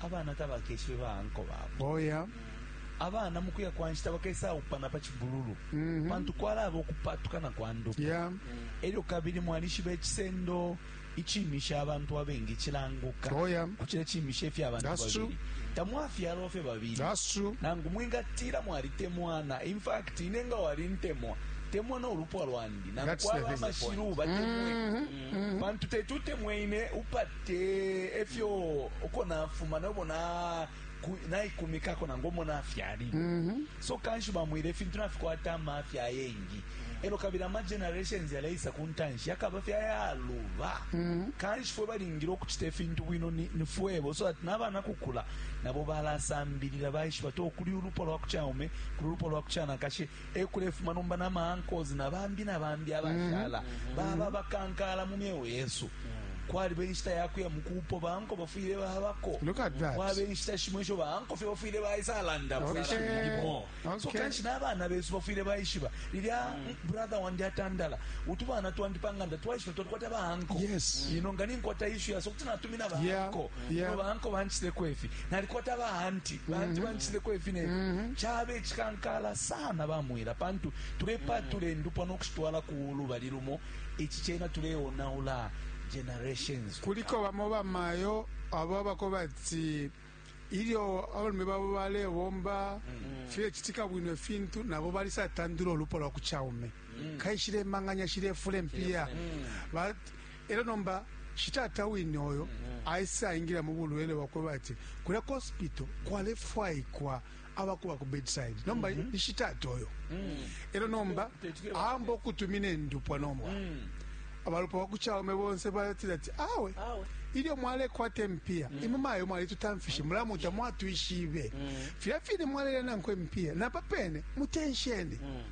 abana tabakeshibe ba anko babo oh, yeah. abana mu kuya kwa nshita bakesaupana pa cibululu mm -hmm. pantu kwalaba okupatukana kwa ndupa yeah. elyo kabili mwalishiba ecisendo icimisha abantu abengi cilanguka oh, yeah. kucila cimisha ifya abantu babili tamwafyalwa fye babili nangu mwingatila mwalitemwana in fact ine nga walintemwa temwa no lupwa lwandi nangu kwaba amashilu batemwe mm -hmm. mm-hmm. pantu teti utemwe ine upate efyo uko nafuma nobo na naikumikako nangu omo nafyali mm -hmm. so kanshi bamwire ifintu nafikwata amafya ayengi mm -hmm. elo kabili amagenerations yaleisa ku ntanshi yakaba fye ayaluba mm-hmm. kanshi fwe balingile okucita efintu bwino ni fwebo so ati n'abaana kukula nabo balasambilila baishiba ti okuli ulupwa lwa kucaume kuli ulupwa lwa kucanakashi ekulefuma nomba na ma uncles na bambi na bambi abashala mm-hmm. mm-hmm. baba bakankala mu myeo yesu mm-hmm. kwaliba enshita yakuya mukupo banko bafwile babako kwaba enshita shimo esho banko fye bafwile baisalandaoimo so kanshi n'abaana besu bafwile baishiba lilya mm. brother wandi atandala utubaana twandi panganda twaishiba twalikwata baanko ino nga ninkwata ishu yaso kuti natumina baanko Yeah. no banko banchitileko ifi nalikwata baanti baanti banchitileko ifi ne chaba echikankala sana bamwila pantu tulepatula endupwa nokushitwala ku lubali lumo ichi chena tuleonaula generations kuliko bamo bamayo abo abako bati ilyo abalume babo balebomba filechitika bwino ifintu nabo balisatandula ulupo lwa kuchaume kaishile manganya shilefula empiya Ba- Elo nomba shitata wine oyo aisa ingila mu bulwele bwakwe bati kulya ku hospital kwalefwaikwa abakuba ku bedside nomba mm -hmm. ishitata oyo mm -hmm. elo nomba aamba okutumina endupwa nomba mm -hmm. abalupa bakuchaume bonse batila ati awe, awe. ilyo mwalekwata empiya mm. imwe mayo mwalitutamfishe mulamu tamwatwishibe mm. filya fine mwalelya nankwe empiya napa pene mutensheni mm.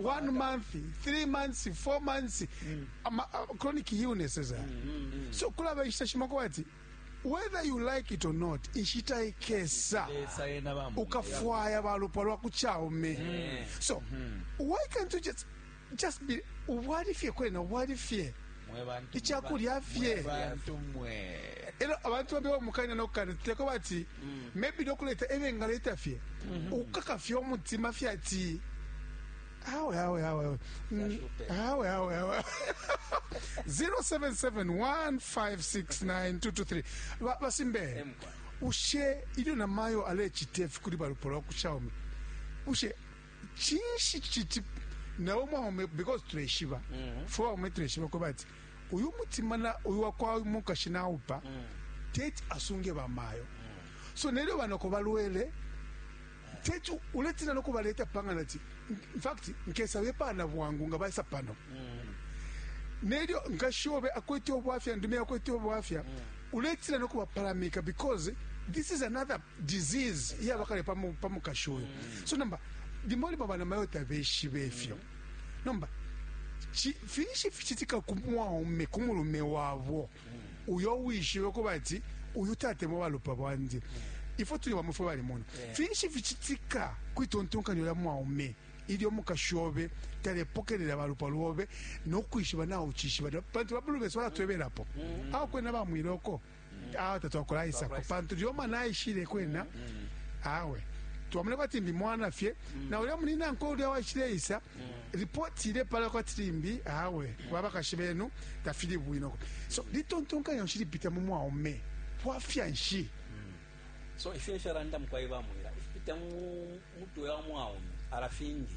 one month three months four months mm. ama, uh, chronic illnesses mm, mm, mm. so kulaba inshita shimo kuba ati whether you like it or not inshita ikesa ukafwaya balupwa lwakuchaume mm. so mm -hmm. why can't you just just be ubwali fye kwena ubwali fye ichakulya fye elo abantu bambi bamukanya nokukana tuteko bati maybe nokuleta ebengaleta fye ukukaka fye umutima fye ati awe awe awe awe Mm, awe awe awe 0771569223 Ba- basimbe ushe ilyo namayo alecita ifi kuli balupo lwa kushaume ushe cinshi citi nawe mwaume because tuleshiba fwe baume tuleshiba ko bati uyu mutima na uyu wakwa mukashi naupa mm. teti asunge bamayo mm. so nelyo banoko balwele teti uletina nokubaleta panga nati infact nkesa bepana bwangu nga baisa pano mm. nelyo nkashi obe akwete obwafya ndume akwete obwafya mm. uletina nokubapalamika because this is another disease iyaba kale pa mu- pa mukashi uyu so nomba limo limo bana mayo tabeshibe ifyo nomba chi- finshi fichitika ku mwaume ku mulume wabo uyo wishibe kuba ati uyu tatemo balupa bwandi ifo tuli bamwe fwe bali muno finshi fichitika kwitontonkanyo lya mwaume ilyo mukashi obe talepokelela balupa lwobe nokwishiba nawe uchishiba pantu babulu besu balatwebelapo awo kwena bamwiloko awa tatwakulaisako pantu lyoma naishile kwena awe twamuleko ati ndi mwana fye na ulya munina nkwe ulya waishileisa ripoti ile pala kwati limbi awe babakashi benu tafili bwinoko so litontonkanya nshi lipita mu mwaume bwafya nshi so ifyo ifyo abantu mukwai bamwira ifipita mu mutwe wa mwaume arafingi